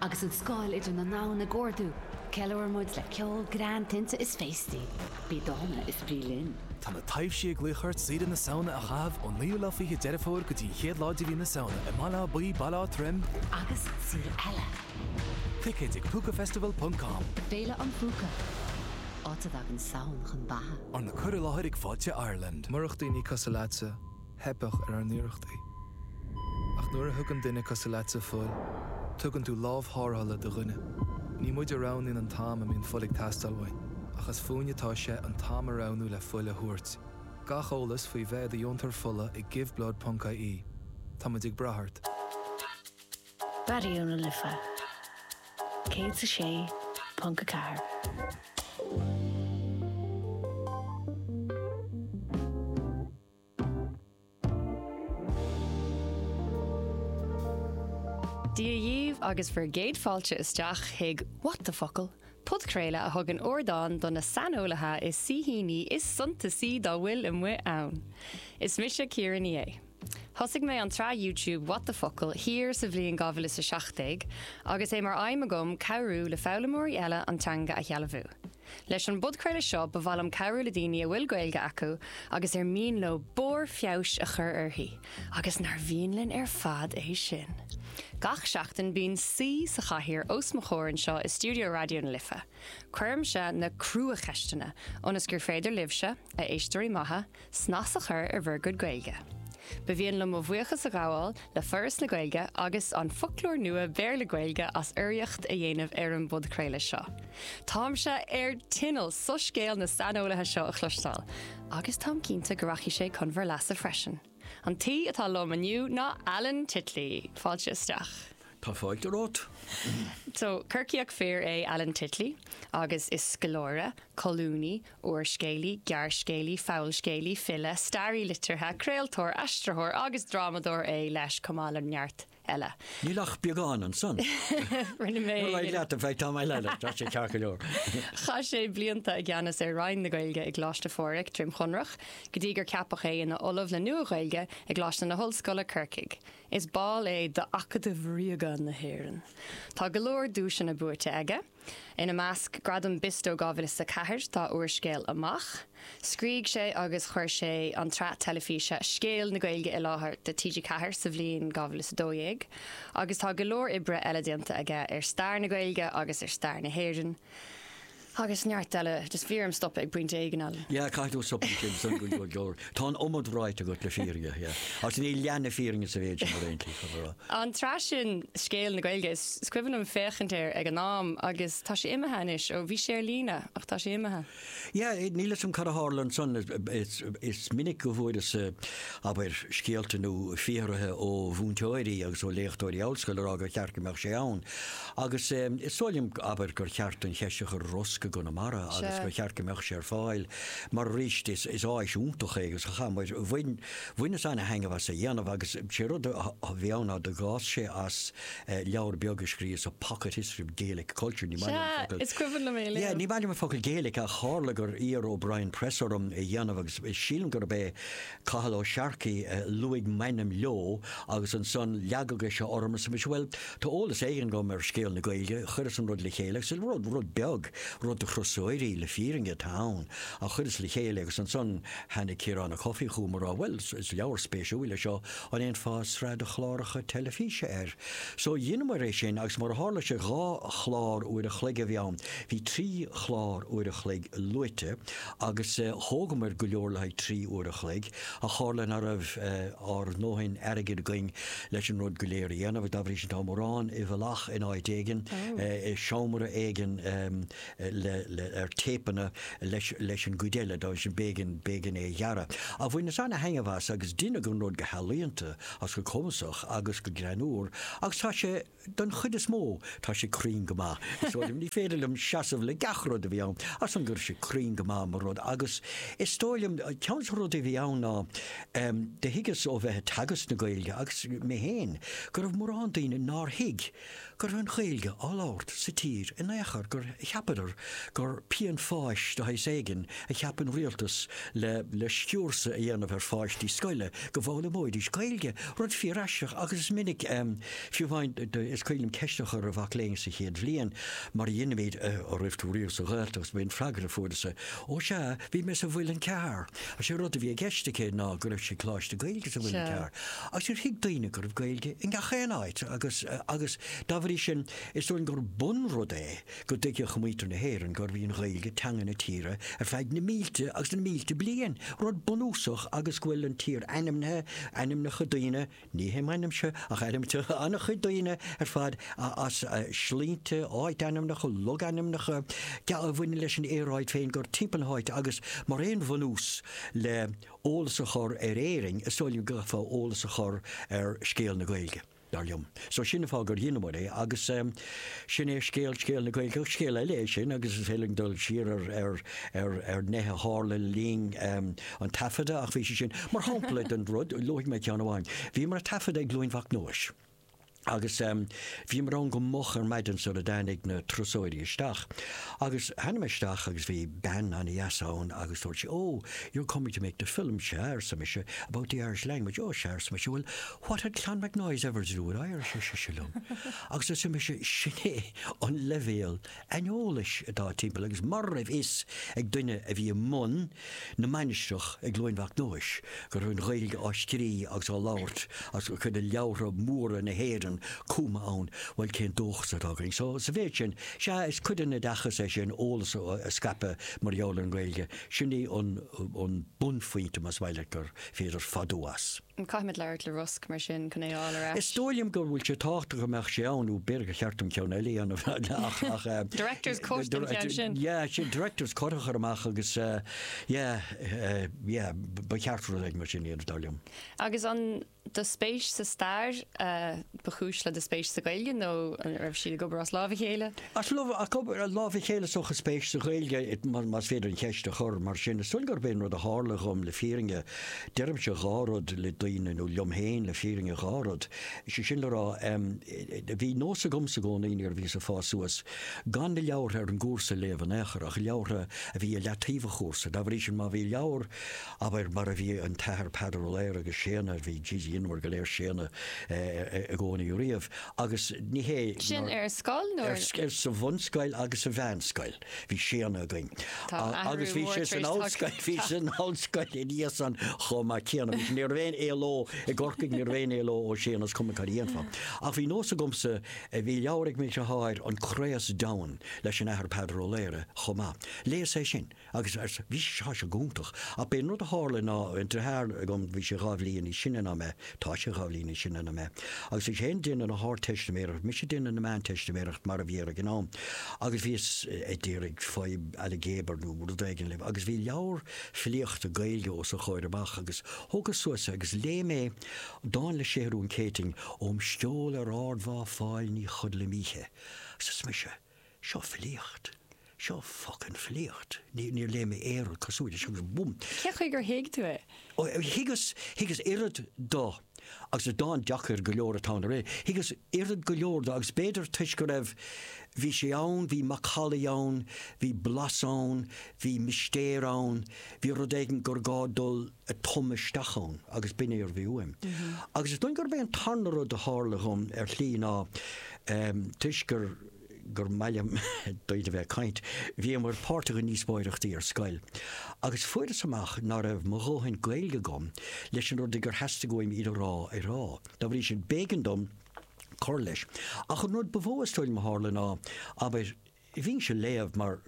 Agus an scáil idir na ndomhan ag ardú, ceiliúrann muid le ceol, greann, tinte is féastaí. Bí dána is bí linn! Tá na taibhsí ag glaoch ort saoire na Samhna a chaitheamh ón naoú lá fiche Deireadh Fómhair go dtí an chéad lá de mhí na Samhna i mBaile Átha Buí, Baile Átha Troim, agus saoire eile! Ticéid ag Púcafestival ponc com. Féile an Phúca, áit a dtagann Samhain chun beatha. Arna cur i láthair ag Fáilte Ireland. Murach daoine cosúil leatsa. theipeadh ar ár n-iarrachtaí. Ach nuair a thugann duine cosúil leatsa fuil, tugann tú lámh tharrthála do dhuine. Ní muid a roghnaíonn an t-am a mbíonn fuil ag teastáil uainn, ach as fúinn atá sé an t-am a roghnú le fuil a thabhairt. Gach eolas faoi bheith i do dheontóir fola ag giveblood.ie. Táimid ag brath ort! Raidió na Life 106.4. Dia dhaoibh agus bhur gcéad fáilte isteach chuig What the Focal! podchraoladh a thugann ardán do na saineolaithe is saoithíní is suntasaí dá bhfuil amuigh ann. Is mise Ciara Ní É. Thosaigh mé an tsraith YouTube What the Focal! thiar sa bhliain 2017 agus é mar aidhm agam cabhrú le foghlaimeoirí eile an teanga a shealbhú. Leis an bpodchraoladh seo ba mhaith liom cabhrú le daoine a bhfuil Gaeilge acu agus ar mian leo barr feabhais a chur uirthi, agus nár mhian linn ar fad é sin! Gach seachtain bíonn saoi sa chathaoir os mo chomhair anseo i stiúideo Raidió na Life. Cuirimse na cruacheisteanna ionas gur féidir libhse, a éisteoirí maithe, Snas a chur ar bhur gcuid Gaeilge. Ba mhian liom mo bhuíochas a ghabháil le Foras na Gaeilge agus an Foclóir Nua Béarla-Gaeilge as urraíocht a dhéanamh ar an bpodchraoladh seo. Táimse ar tinneall soiscéal na saineolaithe seo a chloisteáil agus táim cinnte go rachaidh sé chun bhur leasa freisin. An t-aoi atá liom inniu ná Alan Titley. Fáilte isteach. Tá fáilte romhat. Corcaíoch fir é Alan Titley agus is scoláire, colúnaí, úrscéalaí, gearrscéalaí, fabhalscéalaí, file, staraí liteartha, craoltóir, aistritheoir agus drámadóir é leis, chomh maith le neart eile. Níl ach beagán ansan. Rinne mé. Ar aghaidh leat, in fact, tá mé le leat, tá sé ceart go leor. Chaith sé blianta i gceannas ar Roinn na Gaeilge i gColáiste Phádraig, Droim Chonrach, go dtí gur ceapadh é ina Ollamh le Nua-Ghaeilge i gColáiste na hOllscoile, Corcaigh. Is ball é d'Acadamh Ríoga na hÉireann. Tá go leor duaiseanna buaite aige. Ina measc Gradam Bisto 2004 dá úrscéal Amach. Scrígh sé agus chuir sé an tsraith teilifíse Scéal na Gaeilge i láthair do TG4 sa bhliain 2012 agus tá go leor oibre eile déanta aige ar stair na Gaeilge agus ar stair na hÉireann agus neart eile. Tá an iomad ráite agat le fírinne, sea. Agus níl leath na fírinne sa mhéid sin ar aon tslí. An tsraith sin Scéal na Gaeilge, is cuimhin liom féachaint air ag an am agus tá sé imithe anois, ó bhí sé ar líne ach tá sé imithe. Sea, níl 'fhios agam cad a tharla ansan, is minic go bhfuaireas, abair, scéalta nó fiafraithe ó mhúinteoirí agus ó léachtóirí ollscoile ag rá gur cheart go mbeadh sé ann Agus is dóigh liom, abair, gur cheart an cheist a chur ar Rosg i gConamara agus gur cheart go mbeadh sé ar fáil mar arís is áis iontach é agus chaith muid, bhain, bhaineas an-thaitneamh as a dhéanamh agus sé rud a bhí ann ná d'fhás sé as leabhar beag a scríobhas, A pocket history of Gaelic culture, ní maith liom an focal, is cuimhin liom é léamh, yeah, ní maith liom an focal Gaelic ach tharla gur iarr O'Brien Press orm é dhéanamh agus sílim gurb é Cathal Ó Searcaigh a luaigh m'ainm leo agus ansan leagadh é seo orm arsa mise, bhuel, tá eolas éigin agam ar scéal na Gaeilge, chuireas an rud le chéile agus rud, rud beag, rud do thurasóirí, le fírinne atá ann, ach chuireas le chéile agus ansan tháinig Ciarán Ó Cofaigh chugam ag rá, bhuel, is leabhar spéisiúil é seo, an ndéanfá sraith de chláracha teilifíse air? So dheineamair é sin agus mar a tharla sé dhá chlár uair a chloig a bhí ann, bhí trí chlár uair a chloig luaite, agus thógamar go leor le haghaidh trí uair a chloig, ach tharla nach raibh ár ndóthain airgid againn leis an rud go léir a dhéanamh, dá bhrí sin tá mórán i bhfolach in áit éigin, i seomra éigin ar téipeanna leis an gcuid eile, dá bhrí sin b'éigean é a ghearradh. Ach bhaineas an-thaitneamh as agus deineadh an rud go healaíonta agus go cumasach agus go greannúr agus tá sé. Don chuid is mó, tá sé cruinn go maith. Is dóigh liom, ní féidir liom seasamh le gach rud a bhí ann, ach san go raibh sé cruinn go maith mar rud. Agus is dóigh liom, ceann de na rudaí a bhí ann ná, do thuigeas ó bheith ag teagasc na Gaeilge agus mé féin, go raibh mórán daoine nár thuig go raibh an Ghaeilge á labhairt sa tír in aon chor, gur cheapadar gur pian fáis de shaghas éigin a cheap an rialtas le sciúrsadh a dhéanamh ar pháistí scoile go bhfoghlaimeoidís Gaeilge, rud fíor-aisteach agus is minic. Fiú amháin, is cuimhin liom ceist a chur ar mhac léinn sa chéad bhliain, mar a dhéanaimid an raibh tú riamh sa Ghaeltacht, is b'é an freagra a fuaireas-sa, Ó sea, bhí mé sa Mhuileann Cearr! Is é rud a bhí i gceist aici ná go raibh sí ag Coláiste Gaeilge sa Mhuileann Cearr, agus níor thuig daoine go raibh Gaeilge i ngach aon áit, agus agus dá bhrí sin, is dóigh liom gur bunrud é go dtuigfeadh muintir na hÉireann gurbh í an Ghaeilge teanga na tíre ar feadh na mílte agus na mílte bliain, rud bunúsach, agus go bhfuil an tír ainmnithe, ainmneacha daoine, Ní hé m'ainmse ach ainm an-chuid daoine ar fad is sloinnte, áitainmneacha, logainmneacha, go mbaineann leis an aer Gaeilge fé ndear timpeall na háite agus mar aon bhunús le eolas a chur ar Éirinn is dóigh liom go gcaithfeá eolas a chur ar scéal na Gaeilge, dar liom. So sin an fáth gur dheineamar é agus. Sin é scéal Scéal na Gaeilge ach scéal eile é sin agus is féidir linn dul siar ar nithe a tharla le linn an taifeadta ach bhí sé sin mar shampla den rud, luafaidh mé ceann amháin. Bhíomar ag taifeadadh i gCluain Mhac Nóis agus bhíomar ann go moch ar maidin sara dtáinig na turasóirí isteach agus tháinig mé isteach agus bhí bean an-deas ann agus dúirt sí oh you're coming to make the film, sea, arsa mise, about the Irish language, oh, sea, arsa mise, bhuel what had Clonmacnoise ever to do with Irish, ar sise liom. Agus arsa mise, Sin é an leibhéal aineolais atá timpeall agus mura raibh a fhios ag duine a bhí i mbun na mainistreach i gCluain Mhac Nóis go raibh an Ghaeilge á scrí agus á labhairt agus cuid de leabhartha móra na hÉireann cumtha ann, bhuel cén dóchas atá againn? So sa mhéid sin, sea is cuid den oideachas é sin, eolas a scaipeadh mar gheall ar an nGaeilge, sin é an bunphointe más maith leat gur féidir fadú as. An caithfimid labhairt le Rosg mar sin chun é a fháil ar ais? Is dóigh liom go bhfuil sé tábhachtach go mbeadh sé ann nó b'fhéidir gur cheart dom ceann eile a dhéanamh ach, ach eh, Director's cut den cheann sin! yeah, sin director's cut a chur amach agus eh, yeah, eh, yeah, ba cheart rud éigin mar sin a dhéanamh dar liom. Agus an do spéis sa stair a ba chúis le do spéis sa Ghaeilge nó an raibh siad ag obair as lámh a chéile? As lámh, ag obair as lámh a chéile is dócha, an spéis sa Ghaeilge, más féidir an cheist a chur mar sin, is dóigh gurb é an rud a tharla dhom le fírinne, Deirimse dhá rud le daoine, nó liom féin le fírinne, dhá rud. Sé sin le rá, em, bhí nós agamsa i gcónaí nuair a bhíos ag fás suas, gan na leabhartha ar an gcúrsa a léamh in aon chor, ach leabhartha a bhí i leataobh an chúrsa. Dá bhrí sin má bhí leabhar, abair, mar a bhí an tAthair Peadar Ó Laoghaire agus Séadna ar, bhí, jeez, dheineamar go léir Séadna i gcónaí riamh, agus ní hé Sin nár, ar scoil nó ar, ar, sa bhunscoil agus sa mheánscoil. Bhí Séadna againn. Tá athrú mór tar éis tagtha. Tá. Agus bhí sé san ollscoil, bhí sé san ollscoil ina dhiaidh san chomh maith céanna. Bhí sé ní raibh aon éaló i gCorcaigh, ní raibh aon éaló ó Séadna is cuma cad a dhéanfá. Ach bhí nós agamsa, eh, bhí leabhar ag m'athair, An Craos Deamhan leis an Athair Peadar Ó Laoghaire chomh maith. Léas é sin agus arsa, bhí sé, tá sé go hiontach. Ach b'é an rud a tharla ná, an deartháir agam, bhí sé dhá bhliain níos sine ná mé, Tá sé dhá bhliain níos sine ná mé. Agus eisean ag déanamh na hArdteistiméireacht, mise ag déanamh na Meánteistiméireacht mar a bhí air ag an am. Agus bhíos ag d'iarraidh fadhb ailgéabair nó rud éigin a dhéanamh. Agus bhí leabhar filíochta Gaeilge os a chomhair amach agus thógas suas é agus léigh mé dán le Séathrún Céitinn, Óm sceol ar ardmhá Fáil ní chodlaim oíche. Agus arsa mise. Seo filíocht. Seo focain filíocht. Níor léigh mé aon rud cosúil leis agus búm! Cé chaoi gur thuig tú é? Ó, thuigeas, thuigeas oiread do agus is dán deacair go leor atá ann, thuigeas oiread go leor do agus b'fhéidir toisc go raibh, bhí sé ann, bhí macallaí ann, bhí blas ann, bhí mistéir ann, bhí rud éigin gur gá dul a tumadh isteach ann agus b'in é a bhí uaim. Agus is dóigh gurb é an tarna rud a tharla dhom ar shlí ná, toisc gur, gur maith liom daoibh a bheith ag caint. Bhíomar páirteach i ndíospóireachtaí ar scoil agus fuaireas amach ná raibh mo dhóthain Gaeilge agam leis na rudaí gur theastaigh uaim iad a rá a rá. Dá bhrí sin, b'éigean dom cur leis. Ach an rud ba mhó is dóigh liom a tharla ná, abair, bhínnse ag léamh mar,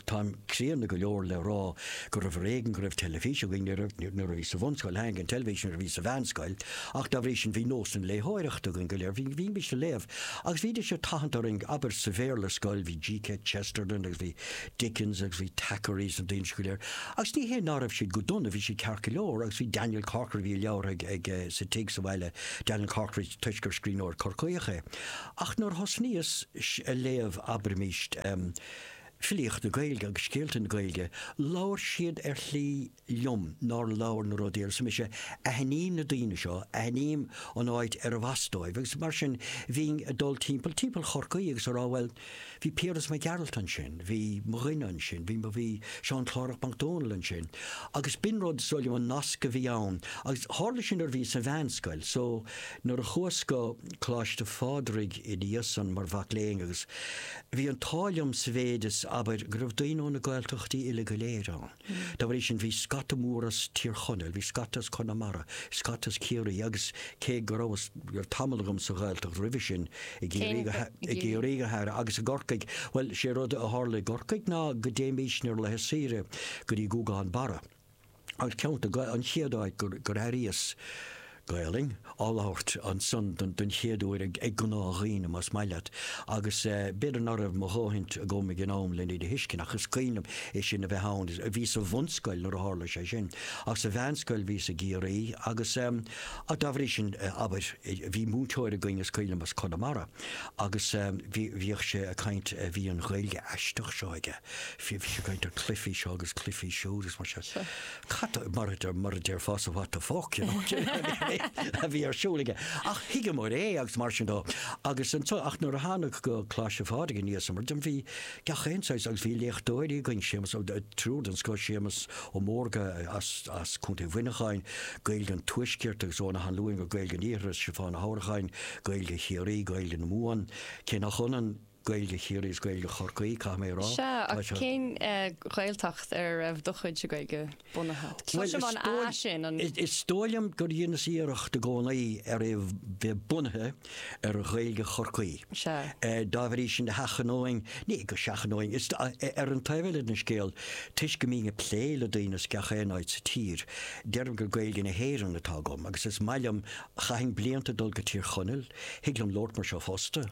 Táim críonna go leor le rá gurbh ar éigean go raibh teilifís againn nuair a bhíos sa bhunscoil, tháinig an teilifís nuair a bhíos sa mheánscoil, ach dá bhrí sin bhí nós na léitheoireachta againn go léir, bhí mise ag léamh agus bhídís ag tathant orainn, abair sa Bhéarla ar scoil bhí G.K. Chesterton agus bhí Dickens agus bhí Thackeray agus na daoine sin go léir agus ní hé ná raibh siad go dona, bhí siad ceart go leor agus bhí Daniel Corkery, bhí a leabhar ag, sa tigh sa bhaile, Daniel Corkery toisc gur scríbhneoir Corcaíoch é. Ach nuair a thosnaíos ag léamh abraimís, filíocht na Gaeilge agus scéalta na Gaeilge, labhair siad ar shlí liom nár labhair na rudaí eile. Arsa mise, aithním na daoine seo, aithním an áit arbh as dóibh agus mar sin bhínn ag dul timpeall, timpeall Chorcaí agus ag rá bhuel, Bhí Piaras Mac Gearailt ansin, bhí mo dhuine ansin, bhí, bhí Seán Clárach Mac Dónaill ansin. Agus b'in rud, is dóigh liom, an nasc a bhí ann. Agus tharla sin nuair a bhíos sa mheánscoil. So, nuair a chuas go Coláiste Phádraig ina dhiaidh san mar mhac léinn agus bhí an t-ádh liom sa mhéid is, abair, go raibh daoine ó na Gaeltachtaí uile go léir ann. Dá bhrí sin bhí scata mór as Tír Chonaill, bhí scata as Conamara, scata as Ciarraí agus cé go raibh tamall agam sa Ghaeltacht roimhe sin, i gCiarraí go háirithe agus i gCorcaigh, bhuel, sé rud a tharla i gCorcaigh ná go dtéimis ar laethe saoire go dtí Gúgán Barra agus ceann, an chéad áit gur airíos Gaelainn á labhairt ansan don chéad uair ag gnáthdhaoine, más maith leat. Agus b'fhéidir ná raibh mo dhóthaint agam ag an am len iad a thuiscint, ach is cuimhin liom é sin a bheith ann. Bhíos sa bhunscoil nuair a tharla sé sin, ach sa mheánscoil bhíos i gCiarraí agus dá bhrí sin, abair, bhí múinteoir againn, is cuimhin liom, as Conamara agus bhíodh sé ag caint, bhí an Ghaeilge aisteach seo aige, bhí sé ag caint ar cluifí seo agus cluifí siúd agus mar sin. Cad mar a mar a déarfása what the fuck you know a bhí ar siúl aige. Ach thuigeamar é agus mar sin de. Agus anso ach nuair a thánag go Coláiste Phádraig ina dhiaidh san mar a deirim bhí gach aon saghas agus bhí léachtóirí againn Séamas, triúr den scoth Séamas Ó Mórdha as as Contae Mhuineacháin Gaeilge an Tuaiscirt agus Eoghan Ó hAnluain go Gaeilge an Iarthair is Stiofán Ó hAnnracháin Gaeilge Chiarraí Gaeilge na Mumhan cé nach ionann Gaeilge Chiarraí is Gaeilge Chorcaí, caithfidh mé a rá. Sea, ach cén Ghaeltacht ar a raibh do chuidse Gaeilge bunaithe? Cloisim an A sin, an. Is dóigh liom gur dheineas iarracht i gcónaí ar é bheith bunaithe ar Ghaeilge Chorcaí. Sea. Dá bhrí sin sheachnóinn, ní hé go seachnóinn, is ar an taobh eile den scéal, toisc go mbím ag plé le daoine as gach aon áit sa tír, deirim gur Gaeilge na hÉireann atá agam agus is maith liom Chaithinn blianta ag dul go Tír Chonaill, thig liom labhairt mar seo fosta,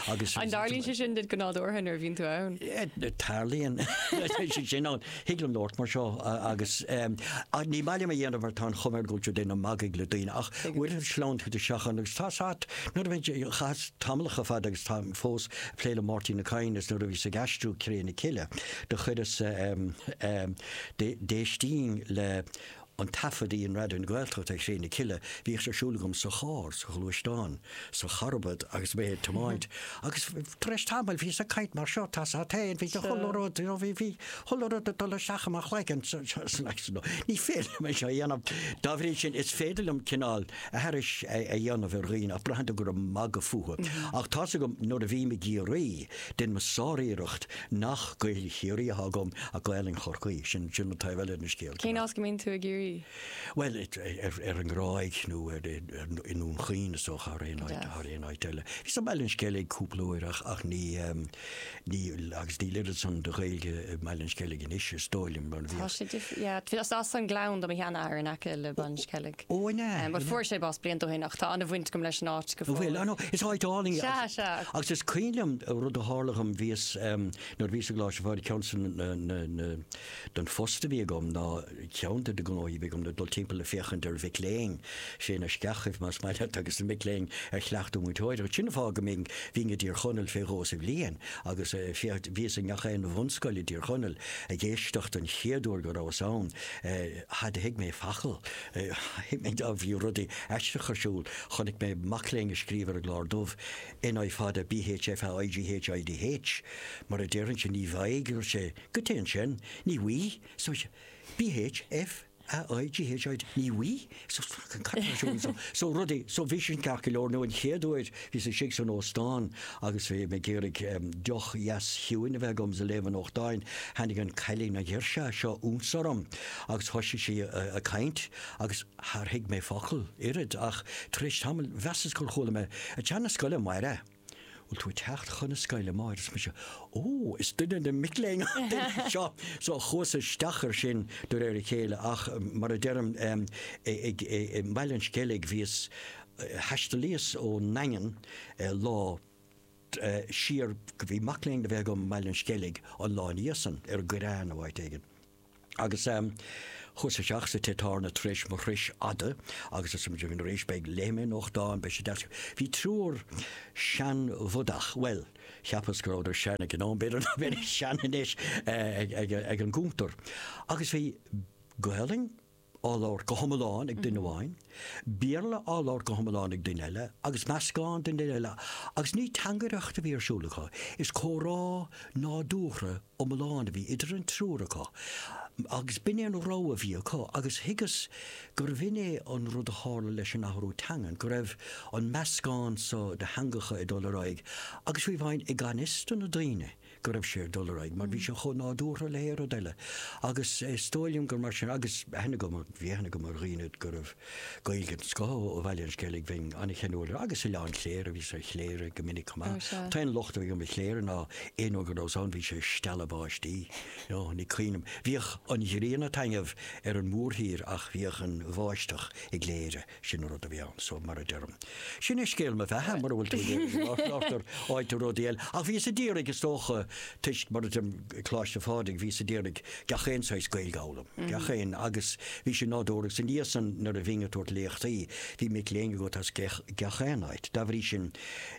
agus. An dtarlaíonn sé sin duit go nádúrtha nuair a bhíonn tú ann? Tarlaíonn sé sin ann, thig liom labhairt mar seo agus ní maith liom a dhéanamh mar tá an chuma air go bhfuil tú ag déanamh magaidh le daoine ach uaireanta sleamhnaíonn tú isteach ann agus tá, nuair a bheidh, chaitheas tamallacha fada agus táim fós ag plé le Máirtín Ó Cadhain is nuair a bhíos ag aistriú Cré na Cille do chuireas, d'éistínn le an taifead a dhein Raidió na Gaeltachta ar Chré na Cille, bhíodh sé ar siúl agam sa charr, sa ghluaisteán, sa charbad agus mé ag tiomáint agus tar éis tamaill bhíos ag caint mar seo, tá's a't fhéin, bhí chuile rud, you know, bhí, bhí chuile rud ag dul isteach i mo chloigeann so, so, so like, no, ní féidir liom é seo a dhéanamh. Dá bhrí sin, is féidir liom cineál aithris a dhéanamh ar dhaoine ach braitheann tú gur ag magadh fúthu. Ach tá's agam nuair a bhím ag iarraidh, déanaim sáriarracht, Nach Gaelainn Chiarraí atá agam ach Gaelainn Chorcaí, sin an taobh eile den scéal. Cén áit go mbíonn tú i gCiarraí? Bhuel, ar an nGráig nó i nDún Chaoin is dócha thar aon áit eile. Bhíos i mBaile an Sceilg cúpla uair ach agus níl oiread san de Ghaeilge i mBaile an Sceilg anois is dóigh liom. Tá sé difriúil. Bhuel, is as an nGleann do mo sheanathair in aice le Baile an Sceilg. Páirc. Eoghain é? Bhuel, fuair sé bás blianta ó shin ach tá an-bhaint agam leis an áit go fóill. An bhfuil? Ah no, is áit álainn í. Sea, sea. Agus is cuimhin liom rud a tharla dhom, bhíos ehm, nuair a bhíos i gColáiste Phádraig, ceann de na, na, na, den phost a bhí agam ná, ceann de na gnóthaí a bhí agam ná dul timpeall ag féachaint ar mhic léinn, sna sceachaibh más maith leat, agus na mic léinn ar chleachtadh múinteoireacht. Sin an fáth go mbínn, bhínn i dTír Chonaill fé dhó sa bhliain agus eh, féach, bhíos i ngach aon bhunscoil i dTír Chonaill ag éisteacht an chéad uair go rabhas ann eh, Char thuig mé focal. Thuig mé dubh. Bhí rudaí aisteach ar siúl. Chonaic mé mac léinn ag scríobh ar an gclár dubh N I fada B H F A I G H I D H mar a déarfainnse ní bhfaighidh, a dúirt sé. Goitse ansin. Ní bhfaighidh. So B H F A I G H I D H ní bhfaighidh. So cad atá ar siúl anseo? So rudaí. So bhí sin ceart go leor nó an chéad uair, Bhíos istigh san óstán agus bhí mé ag iarraidh deoch dheas chiúin a bheith agam is ag léamh an nuachtáin. Tháinig an cailín, an ghirseach seo ionsorm agus thoisigh sí ag caint agus char thuig mé focal, oiread, ach tar éis tamaill mheasas gur chuala mé, Ag teacht 'na scoile amárach? Bhfuil tú ag teacht chun na scoile amárach? Arsa mise, Ó, is duine de na mic léinn an duine seo! So chuas isteach ar sin de réir a chéile ach mar a deirim i mBaile an Sceilg bhíos, Thaistealaíos ón nDaingean lá siar, bhí mac léinn a bheith agam i mBaile an Sceilg an lá ina dhiaidh san, ar an gCoireán nó áit éigin. Agus chuas isteach sa Tigh Tábhairne tar éis mo thurais fhada agus is muid a bhí ina réis beidh, léifidh mé nuachtán, beidh sé deas. Bhí triúr seanbhodach, bhuel, cheapas go rabhadar sean ag an am, b'fhéidir nach mbeidís sean anois, ag an gcuntar. Agus bhí Gaolainn, á labhairt go hiomlán ag duine amháin, Béarla á labhairt go hiomlán ag duine eile, agus meascán den duine eile, agus ní teangaireacht a bhí ar siúl acu, is comhrá nádúrtha iomlán a bhí idir an triúr acu, agus b'in é an rogha a bhí acu, agus thuigeas gurbh in é an rud a tharla leis an athrú teangan, go raibh an meascán seo de theangacha ag dul ar aghaidh, agus fiú amháin i ganfhios do na daoine. go raibh sé ag dul ar aghaidh mar bhí sé chomh nádúrtha le haon rud eile agus is dóigh liom gur mar sin agus aithne agam, bhí aithne agam ar dhaoine go raibh Gaeilge den scoth ó Bhaile an Sceilg, bhínn an-cheanúil air agus Oileán Chléire, bhíos ar Chléire go minic chomh maith. An t-aon locht a bhí agam ar Chléire ná aon uair go rabhas ann bhí sé ag stealladh báistí, ó, ní cuimhin liom. Bhíodh an ghrian ag taitneamh ar an mórthír ach bhíodh an bháisteach i gCléire. Sin an rud a bhí ann, so mar a deirim. Sin é scéal mo bheatha, mura bhfuil tú ag iarraidh go labhartar áit ar rudaí eile. Ach bhíos ag iarraidh, is dócha, toisc, mar a deirim, Coláiste Phádraig, bhíos ag iarraidh gach aon saghas Gaeilge a fhoghlaim, gach aon, agus bhí sin nádúrtha. Agus ina dhiaidh san, nuair a bhínn ag tabhairt léachtaí, bhí mic léinn agat as gach aon áit. Dá bhrí sin,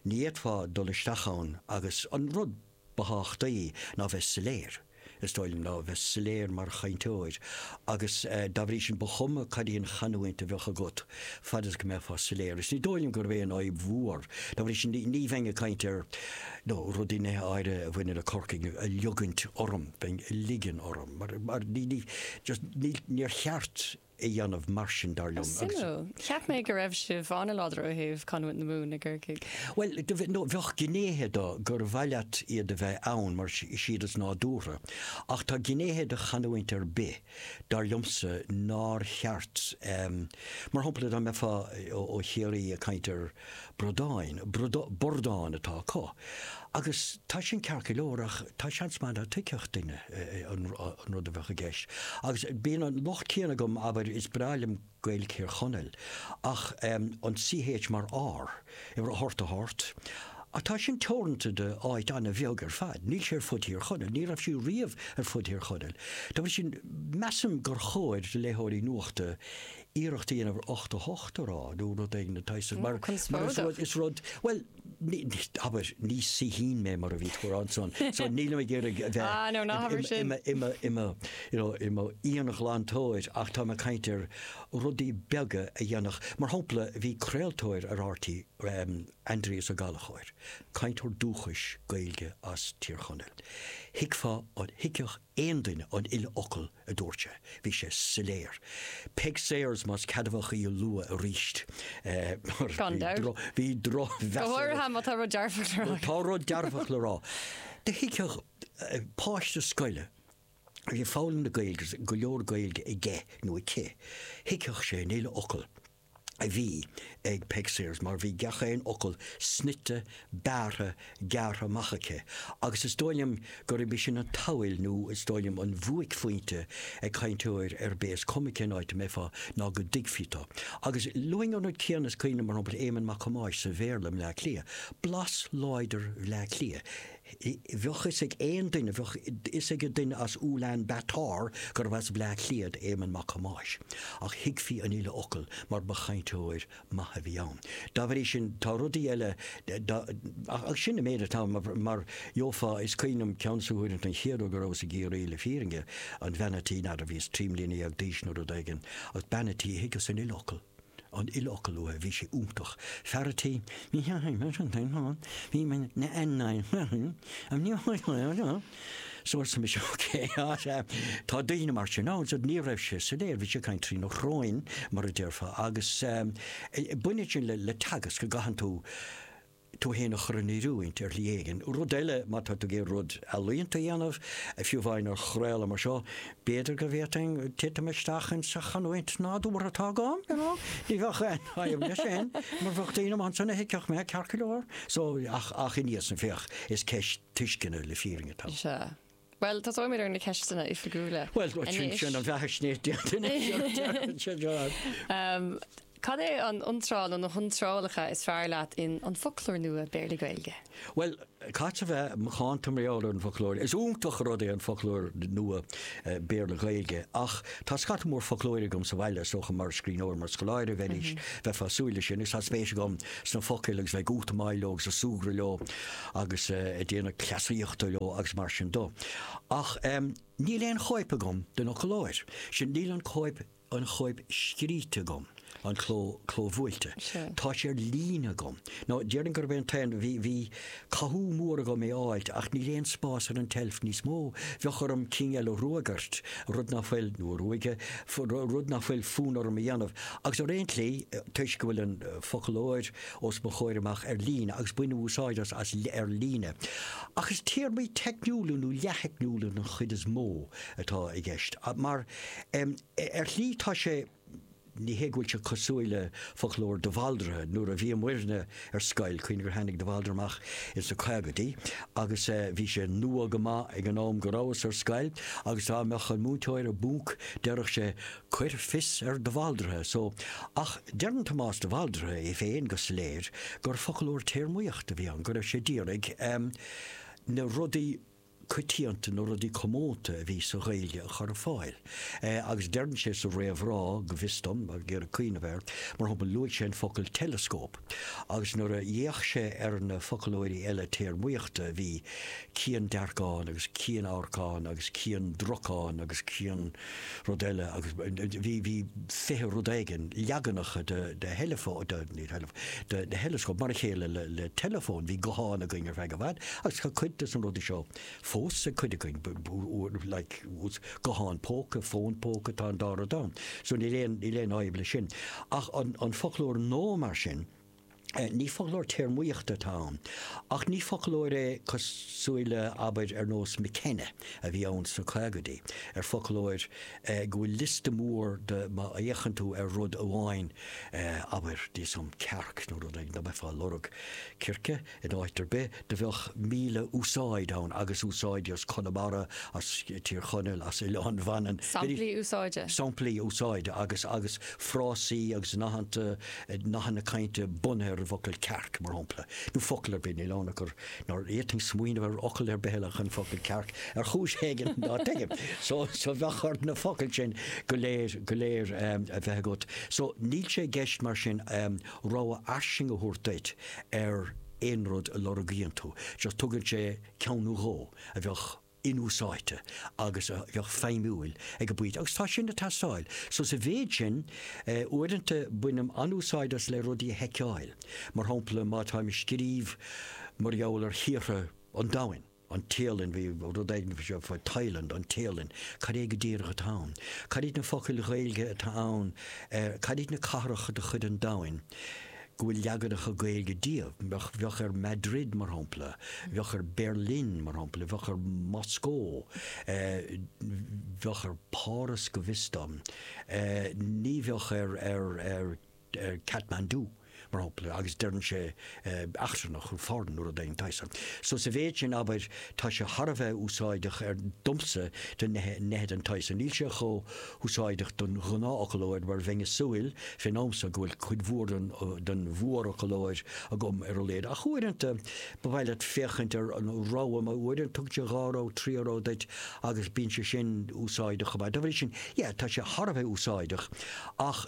ní fhéadfá dul isteach ann agus an rud, Ba thábhachtaí ná bheith soiléir, is dóigh liom, ná bheith soiléir mar chainteoir agus dá bhrí sin ba chuma cad í an chanúint a bheadh agat, fad is go mbeifeá soiléir. Is ní dóigh liom gurb é an fhadhb mhór. Dá bhrí sin ní bheinn ag caint ar nó rudaí nithe áirithe a bhaineann le Corcaigh ag liogaint orm, bheinn ag ligean orm mar ní just níor cheart. a dhéanamh mar sin dar liom. Suimiúil. Cheap mé go raibh sibh an-láidir ó thaobh canúint na Mumhan i gCorcaigh. Bhuel, no, bheadh gnéithe de gur mhaith leat iad a bheith ann mar siad is nádúrtha, ach tá gnéithe de chanúint ar bith, dar liomsa, nár cheart, mar shampla dá mbeifeá ó Chiarraí ag caint ar, Bradáin, bordáin atá acu. Agus tá sin ceart go leor ach tá seans maith ná tuigfeadh duine an rud a bheadh i gceist. Agus bíonn an locht céanna agam, abair, is breá liom Gaeilge Thír Chonaill ach an CH mar R abair, bort, a hort. Ach tá sin teoranta do áit an-bheag ar fad. Níl sé ar fud Thír Chonaill, ní raibh sí riamh ar fud Thír Chonaill. Dá bhrí sin, measaim gur chóir do léitheoirí nuachta iarracht a dhéanamh ar 88 a rá nó rud éigin den tsaghas mar is rud bhuel abair ní saoithín mé mar a bhí tú a rá ansan so nílim ag iarraidh a bheith i mo íonghlantóir ach táim ag caint ar rudaí beaga a dhéanfadh mar shampla bhí craoltóir ar RTÉ Aindrias Ó Gallchóir cainteoir dúchais Gaeilge as Tír Chonaill thuigfeá an thuigfeadh aon duine an uile fhocal a dúirt sé. Bhí sé soiléir. Peig Sayers, más ceadmhach í a lua arís. Gan dabht. Bhí drochmheas ar. Go háirithe má tá rud dearfach le rá. Tá rud dearfach le rá. Do thuigfeadh páiste scoile a bhí ag foghlaim na Gaeilge agus go leor Gaeilge aige nó aici, thuigfeadh sé an uile fhocal. a bhí ag Peig Sayers mar bhí gach aon fhocal snoite, bearrtha, gearrtha amach aici agus is dóigh liom gurb í sin an tsamhail nó is dóigh liom an bhuaicphointe ag cainteoir ar bith, is cuma cén áit a mbeifeá, ná go dtuigfí tú. Agus luafainn an rud céanna is cuimhin liom, mar shampla, Éamonn Mac Thomáis sa Bhéarla i mBleá Cliath. Blas láidir Bhleá Cliath. Bheadh 'fhios ag aon duine, bheadh 'fhios ag an duine as Ulan Bator gurbh as Bleá Cliath do Éamonn Mac Thomáis, ach thuigfí an uile fhocal mar ba chainteoir maith a bhí ann. Dá bhrí sin, tá rudaí eile, ach sin an méid atá ann, mar gheofá, is cuimhin liom ceann des na huaireanta, an chéad uair go rabhas i gCiarraí, le fírinne, an bhean a' tí, n'fheadar, bhíos trí mbliana dhéag d'aois nó rud éigin, ach bean a' tí, thuigeas an uile fhocal. an uile fhocal uaithi, bhí sé iontach. Fear a' tí, Ní theachaigh mé sin féin ann, bhí mé na an nine féin, an ní tháinig mé ann ann, so arsa mise ok, tá daoine mar sin ann, so ní raibh sé soiléir, bhí sé ag caint trína shróin, mar a déarfá, agus baineann sin le teagasc, go gcaitheann tú, tú fhéin a chur in oiriúint ar shlí éigin. Rud eile, má tá tú ag iarraidh rud ealaíonta a dhéanamh, fiú amháin ar chraoladh mar seo, b'fhéidir go bhféadfainn titim isteach ins an chanúint nádúrtha atá agam, you know? Ní bheadh aon fhadhb leis sin, mar bheadh daoine amach ansan a thuigfeadh mé, ceart go leor. So, ach, ach ina dhiaidh san, féach, is ceist tuisceana le fírinne atá ann. Sea. Bhuel, tosóimid ar na ceisteanna oifigiúla. Bhuel, sin sin an bheathaisnéis de. Cad é an iontráil nó na hiontrálacha is fearr leat in An Foclóir Nua Béarla-Gaeilge? Bhuel, caithfead a bheith macánta, tá mé eolach ar an Foclóir. Is iontach an rud é an Foclóir Nua Béarla-Gaeilge ach tá scata mór foclóirí agam sa bhaile, is dócha mar scríbhneoir, mar scoláire a bheidís, bheifeá ag súil leis sin, agus tá spéis agam sna focail agus bheith ag útamáil leo agus ag súgradh leo. agus ag déanamh cleasaíochta leo agus mar sin de. Ach em, níl aon chóip agam den fhoclóir sin, níl an cóip, an chóip scríte agam, an cló, clóbhuailte. Sure. Tá sé ar líne agam. Nó déarfainn gurb é an t-aon, bhí, bhí cathú mór agam é a fháilt ach níl aon spás ar an tseilf níos mó, bheadh orm cinn eile a ruagairt, rud nach bhfuil, nó a ruaigeadh, rud nach bhfuil fonn orm a dhéanamh. Agus ar aon tslí, toisc go bhfuil an foclóir, os mo chomhair amach ar líne agus bainim úsáid as as ar líne. Ach is téarmaí teicniúla nó leath-theicniúla den chuid is mó atá i gceist. Mar, em, ar shlí tá sé, ní hé go bhfuil sé cosúil le foclóir de Bhaldraithe, nuair a bhí muidne ar scoil, cuimhnigh gur tháinig de Bhaldraithe amach ins na caogaidí agus, eh, bhí sé nua go maith ag an am go rabhas ar scoil agus dá mbeadh an múinteoir i bponc déarfadh sé, Cuir fios ar de Bhaldraithe so. Ach deireann Tomás de Bhaldraithe é féin go soiléir gur foclóir téarmaíochta a bhí ann, go raibh sé ag iarraidh na rudaí coitianta, na rudaí comónta a bhí sa Ghaeilge a chur ar fáil. Agus deireann sé sa réamhrá, go bhfios dom, ag iarraidh cuimhneamh air, mar shampla, luaigh sé an focal teileascóp. Agus nuair a d'fhéach sé ar na foclóirí eile téarmaíochta bhí ciandearcán agus cianamharcán agus ciandracán agus cian. Rud eile agus bhí bhí fiche rud éigin leaganacha de de theileafón de ní theileafón de theileascóp mar a chéile le le teileafón bhí guthán againn ar feadh i bhfad agus tá cuid des na rudaí seo fós ag cuid againn like guthán póca fón póca tá an dá rud ann so níl aon níl aon fhadhb leis sin ach an an foclóir nua mar sin Ní foclóir téarmaíochta atá ann, ach ní foclóir é cosúil le, abair, ar nós McKenna a bhí ann sna caogaidí, ar foclóir go bhfuil liosta mór de má fhéachann tú ar rud amháin, abair, d'fhios agam, cearc nó rud éigin, ná beifeá ag lorg circe. In áit ar bith, do bheadh míle úsáid ann agus úsáidí as Conamara, as Tír Chonaill, as Oileán Mhanann. Samplaí úsáide? Samplaí úsáide agus agus frásaí agus nathanna, nathanna cainte bunaithe ar an bhfocal 'cearc' mar shampla. Nó focal ar bith, níl ann ach gur nár fhéadfainn smaoineamh ar fhocal ar bith eile ach an focal 'cearc' ar chúis éigin ná tuigim. So so bheadh ort na focail sin go léir go léir a bheith agat. So níl sé i gceist mar sin, rogha fhairsing a thabhairt duit ar aon rud a lorgaíonn tú, just tugann sé ceann nó dhó a bheadh inúsáidte agus a bheadh feidhmiúil ag an bpointe agus tá sin ag teastáil. So sa mhéid sin, uaireanta bainim an-úsáid as le rudaí a sheiceáil, mar shampla má táim ag scríobh mar gheall ar thíortha an domhain, an Téalainn bhí rud éigin faoi seo faoi Thailand, an Téalainn, cad é go díreach atá ann? Cad iad na focail Ghaeilge atá ann ar, cad iad na cathracha de chuid an domhain go bhfuil leaganacha Gaeilge díobh? Bheadh, bheadh ar Madrid, mar shampla, bheadh ar Berlin, mar shampla, bheadh ar Moscó, bheadh ar Páras go bhfios dom, ní bheadh ar, ar, ar. Kathmandu, mar shampla, agus deireann sé eachtrannach nó foreign nó rud éigin den tsaghas san. So sa mhéid sin, abair, tá sé thar a bheith úsáideach ar, domsa, do neithe den tsaghas san. Níl sé chomh húsáideach don ghnáthfhoclóir mar bheinn a' súil, fén am so, go bhfuil cuid mhór den mhórfhoclóir agam ar a laghad. Ach uaireanta ba mhaith leat féachaint ar an rogha mar uaireanta tugann sé dhá rogha, trí rogha duit agus bíonn sé sin úsáideach chomh maith. Dá bhrí sin, yeah, tá sé thar a bheith úsáideach ach.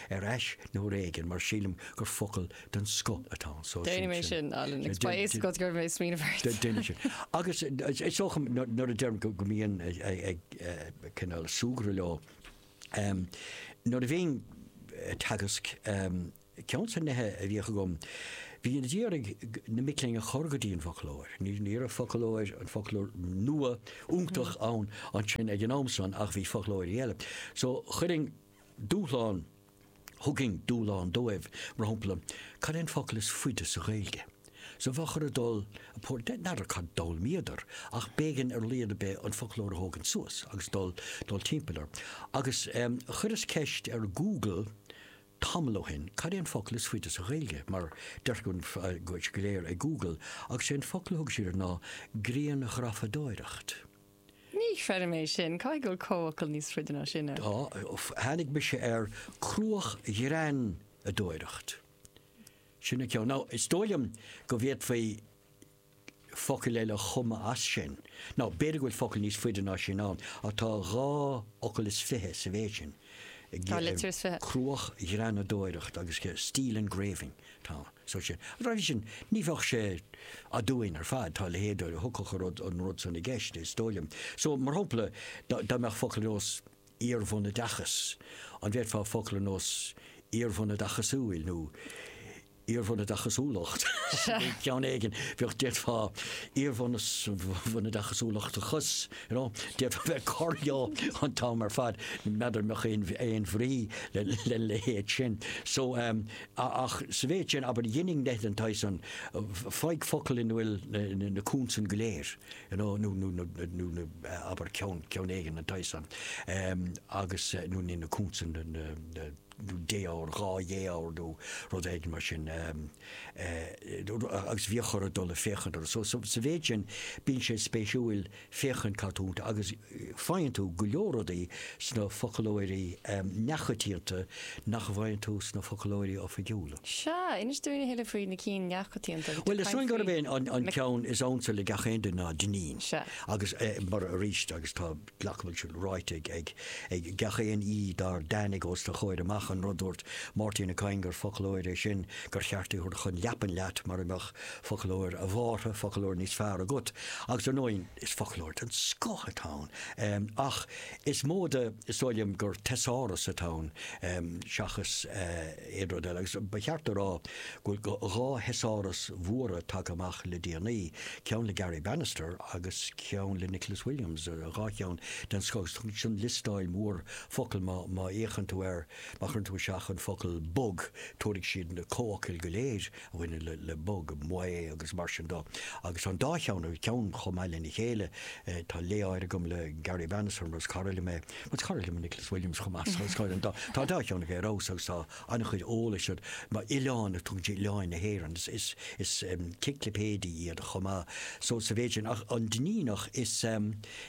ar ais nó ar éigean mar sílim gur focal den scoth atá ann so Déanfaidh mé sin, Alan, agus beidh a fhios agat go raibh mé ag smaoineamh ort. Déanfaidh sin. Agus is dócha nuair a deirim go mbínn ag cineál súgradh leo, nuair a bhínn ag teagasc, ceann des na nithe a bhíodh agam, bhínn a d'iarraidh na mic léinn a chur go dtí an bhfoclóir. Ní ní raibh foclóir, an foclóir nua, iontach ann ansin ag an am san ach bhí foclóirí eile. So chuirfinn Dúshlán, Thugainn dúshlán dóibh, mar shampla, cad é an focal is faide sa Ghaeilge? So bheadh orthu dul, b'fhéidir, n'fheadar cad d'fhoghlaimíodar ach b'éigean ar a laghad ar bith an foclóir a thógaint suas agus dul dul timpeall air. Agus chuireas ceist ar Google tamall ó shin, cad é an focal is faide sa Ghaeilge? Mar deirtear go léir ag Google, agus sé an focal a thug siad air ná grianghrafadóireacht. Ní chreidim é sin. Caithfidh go bhfuil comhfhocal níos faide ná sin ann. Tá. Tháinig mise ar cruachghreanadóireacht. Sin an ceann. Nó is dóigh liom go bhféadfaí focail eile a chumadh as sin. Nó b'fhéidir go bhfuil focal níos faide ná sin ann, ach tá dhá fhocal is fiche sa mhéid sin. Dhá litir is fiche. Cruachghreanadóireacht agus steel engraving atá ann. so sin. An rud é sin, ní bheadh sé aduain ar fad, tá a leithéid a thiocfadh a rud, an rud san i gceist, is dóigh liom. So, mar shampla, dá, dá mbeadh focal ar nós iarbhunoideachas, an bhféadfá focal ar nós iarbhunoideachasúil nó iarbhunoideachasúlacht, ceann éigin, bheadh, d'fhéadfá iarbhunos, bhunoideachasúlachtachas, you know, d'fhéadfá bheith ag cur leo an t-am ar fad, n'fheadar an mbeadh aon, aon bhrí le, lena leithéid sin. So, ehm. a Ach sa mhéid sin, abair, dheininn nithe den tsaghas san, faigh focal ina bhfuil na consain go léir, you know, nó, nó, nó, nó na, abair, ceann, ceann éigin den tsaghas san, em, agus, nó na na consain, na, na, na, nó défhoghar, dhá dhéfhoghar nó rud éigin mar sin, em, eh, agus bhíothas ag dul ag féachaint orthu. So, so, sa mhéid sin, bíonn sé spéisiúil. féachaint cad tá iontu agus faigheann tú go leor rudaí sna foclóirí neamhchoitianta nach bhfaigheann tú sna foclóirí oifigiúla. Sea, inis dúinn a thuilleadh faoi na cinn neamhchoitianta. Bhuel is eol dúinn gurb é an ceann is ansa le gach aon duine ná Dinneen. Sea. Agus mar, arís, agus tá, glacaim go bhfuil sin ráite ag gach aon aoi dár dtáinig os do chomhair amach, an rud dúirt Máirtín Ó Cadhain gur foclóir é sin gur cheart é thabhairt chun leapan leat mara mbeadh Foclóir, ábhar, foclóir níos fearr agat, agus ar ndóigh is foclóir den scoth atá ann, ach is mó de is dóigh liom gur teasáras atá ann seachas aon rud eile, agus ba cheart a rá go bhfuil dhá theasáras mhóra tagtha amach le déanaí, ceann le Garry Bannister agus ceann le Nicholas Williams, dhá cheann den scoth, agus tugann siad liosta mór focal, má fhéachann tú air, má chuireann tú isteach an focal bog tabharfaidh siad na comhfhocail go léir. bhaineann le bog, maoth agus mar sin de agus tá an dá cheann ar cheann chomh maith lena chéile. Tá lé áirithe agam le Garry Bannister mar is cara liom é agus is cara liom Nicholas Williams chomh maith so is cóir an dá tá an dá cheann ag ar fheabhas agus tá an-chuid eolais iontu mar oileáin tugann oileáin na hÉireann is is is ciclipéidí iad chomh maith so sa mhéid sin ach an Duinníneach is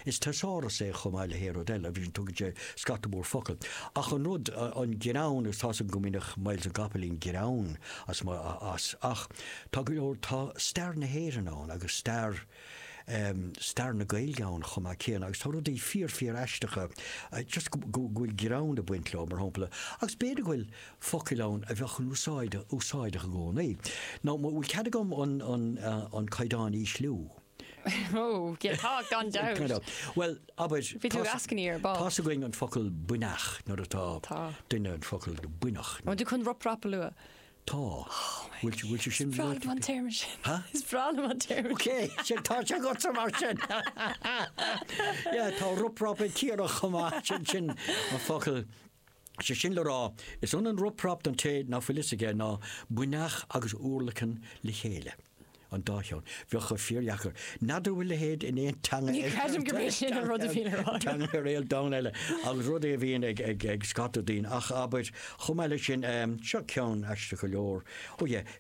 Is teasáras é chomh maith le haon rud eile, you know, tugann sé scata mór focal. Ach an rud, an greann, is tá's agam go mbainfeadh Myles na gCopaleen greann as mo, as, ach tá go leor, tá stair na hÉireann ann agus stair em, stair na Gaeilge ann chomh maith céanna agus tá rudaí fíor, fíor aisteacha just go, go bhfuil greann ag baint leo, mar shampla, agus b'fhéidir go bhfuil focail ann a bheadh in úsáid, úsáideach i gcónaí. Now, an bhfuil cead agam an, an, an caighdeán a ísliú? Oh, yeah, tá, gan dabht. Gan dabht. Bhuel, abair, Bhí tú ag eascainí ar ball. tá's againn an focal buinneach nuair atá Tá. duine an focal buinneach. An bhfuil tú chun rup rap a lua? Tá. Bhfuil tú, bhfuil tú sin luaite? Breá liom an téarma sin. Ha? Is breá liom an téarma Ok, sin, tá sé agatsa mar sin. Yeah, tá rup rap ag Ciarraí chomh maith, sin, sin an focal. Is é sin le rá, is ionann rup rap don té nach bhfuil fhios aige ná buinneach agus urlacan le chéile. An dá cheann. Bheadh sé fíor dheacair. N'fheadar an bhfuil a leithéid in aon teanga eile. Ní creidim gurb é sin an rud a bhíonn ar. teanga ar an domhan eile agus rud é a bhíonn ag ag ag scata daoine ach abair chomh maith le sin seo ceann aisteach go leor. Ó yeah,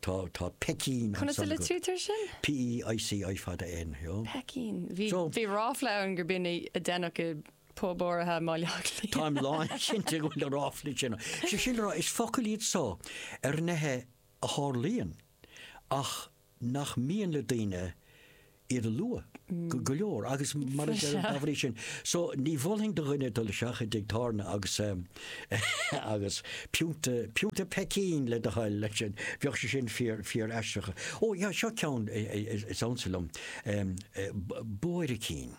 Tá, tá peicín Conas a ansan agat. litrítear sin? P-e-i-c-i fada N, you know. Peicín. Bhí, So- bhí ráfla ann gur b'in a, a deineadh i bpub áirithe i mBaile Átha Cliath. Táim lán cinnte go bhfuil na ráflaí sin. ann. Sé sin le rá, is focail iad so ar nithe a tharlaíonn ach nach mian le daoine iad a lua go go leor agus mar is ar an bhrí sin. So ní mholfainn do dhuine dul isteach i dtigh tábhairne agus agus pionta pionta peicín le do thoil leis sin. Bheadh sé sin fíor fíor aisteach. Ó yeah seo ceann is ansa liom. Buaircín.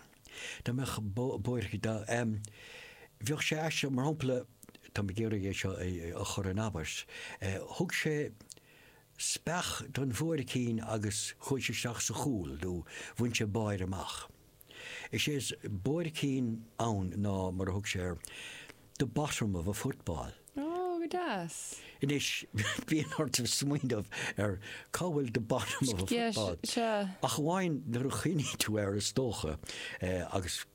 Dá mbeadh buairc bheadh sé aisteach mar shampla tá mé ag iarraidh é seo a chur in abairt. Thug sé speach don bhuaircín agus chuaigh sé isteach sa chúl nó bhain sé báire amach. Is é is buaircín ann ná, mar a thug sé air, the bottom of a football. Ó, go deas. Anois, bíonn ort smaoineamh ar cá bhfuil the bottom of a football, ach amháin nuair a chuimhníonn tú air is dócha, agus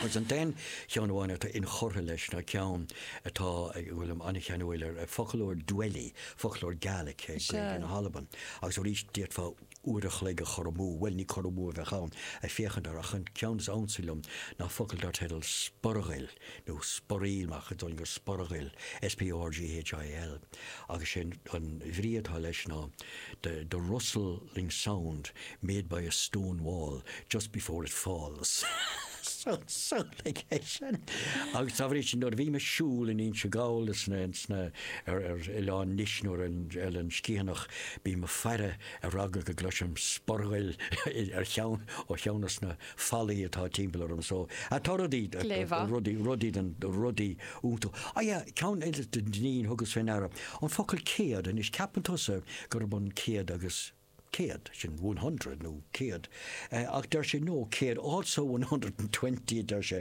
Agus an t-aon cheann amháin atá inchurtha leis ná ceann atá, go bhfuilim an-cheanúil air, foclóir Dwelly, foclóir Gaelic, Gaeilge na hAlban. Agus arís, d'fhéadfá uair a chloig a chur amú, bhuel, ní cur amú a bheadh ann, ag féachaint air, ach an ceann is ansa liom ná focal dar teideal 'sporghill', nó 'sporail' mar a chuid Ollainnis, sporghail, S-P-O-R-G-H-I-L. Agus sé an bhrí atá leis ná the, the rustling sound made by a stone wall just before it falls. Agus dá bhrí sin, nuair a bhím ag siúl in Inse Gall is ar Oileán Nis nó ar Eilean Sgitheanach, bím ag faire ar eagla go gcloisim sporghail ar cheann ó cheann de na. fallaí atá timpeall orm so tá rudaí rudaí rudaí den rudaí iontu ah yeah ceann eile dár thugas féin aire an focal céad anois ceapann tusa gurb an céad agus céad sin one hundred nó céad eh ach deir sé no céad also one hundred and twenty a deir sé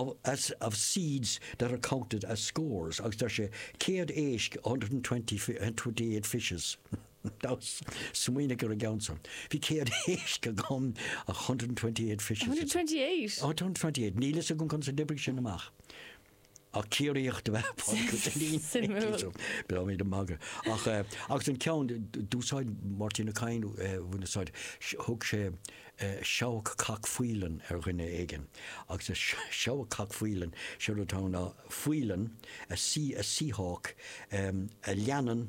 of as of seeds that are counted as scores agus deir sé céad éisc a hundred and twenty fi- and twenty eight fishes. Smaoinigh ar an gceann san. Bhí céad éisc agam, a hundred and twenty eight fishes. hundred and twenty eight? A hundred and twenty eight. Níl a fhios agam conas a d'oibrigh sin amach. Ach Ciarraíoch dob ea Pádraig Ó Duinnín. Suimiúil. B'fhearr mé do magadh. Ach, agus an ceann, d'úsáid Máirtín Ó Cadhain, bhain úsáid, thug sé seabhac cac faoileann ar dhuine éigin. Agus seabhac cac faoileann, sé rud atá ann ná faoileann, a sea, a sea hawk, a leanann,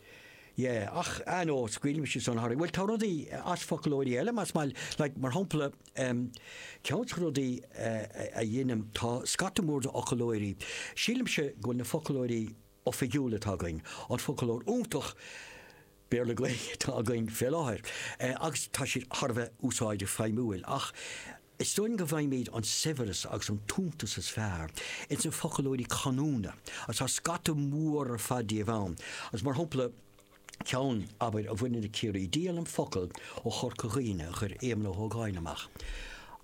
Yeah, ach I know, scaoilimse san tharam a bhfuil, tá rudaí as foclóirí eile más maith, like, mar shampla, um, ceann des na rudaí a dheinim, tá scata mór de fhoclóirí, sílimse go bhfuil na foclóirí oifigiúla atá againn, an foclóir iontach Béarla-Gaeilge atá againn fé láthair, eh, agus tá siad thar a bheith úsáideach feidhmiúil, ach Is dóigh liom go bhfaighimid an saibhreas agus an t-iontas is fearr ins na foclóirí canúna, agus tá scata mór ar fad díobh ann, agus mar shampla, ceann, abair, a bhaineann le Ciarraí, díolaim focal ó Chorca Dhuibhne a chuir Éamonn Ó hÓgáin amach.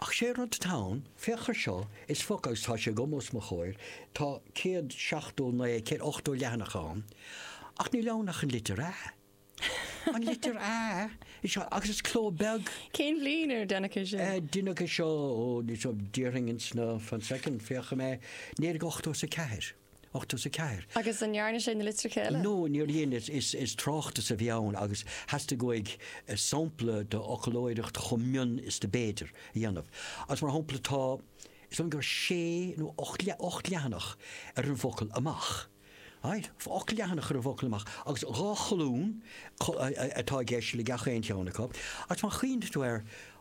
Ach sé rud atá ann, féach air seo, is focal, agus tá sé agam os mo chomhair, tá céad seachtó naoi, céad ochtó leathanach ann, ach ní leanann ach an litir 'a'. An litir A i seo agus is cló beag. Cén bhliain ar deineadh é seo? Deineadh é seo ó níl a fhios agam déarfainn ins na fan soicind féachaidh mé naoi déag ochtó is a ceathair. Ochtó is a ceathair. Agus an ndearna sé na litreacha eile? No níor dhein is is is tráchtas a bhí ann agus theastaigh uaidh sampla de fhoclóireacht chomh mion is do b'fhéidir a dhéanamh agus mar shampla tá is dóigh liom gur sé nó ocht ocht leathanach ar an bhfocal amach. Right. Ocht leathanach ar an bhfocal amach agus dhá cholún atá i gceist le gach aon cheann acu. Agus má chuimhníonn tú air,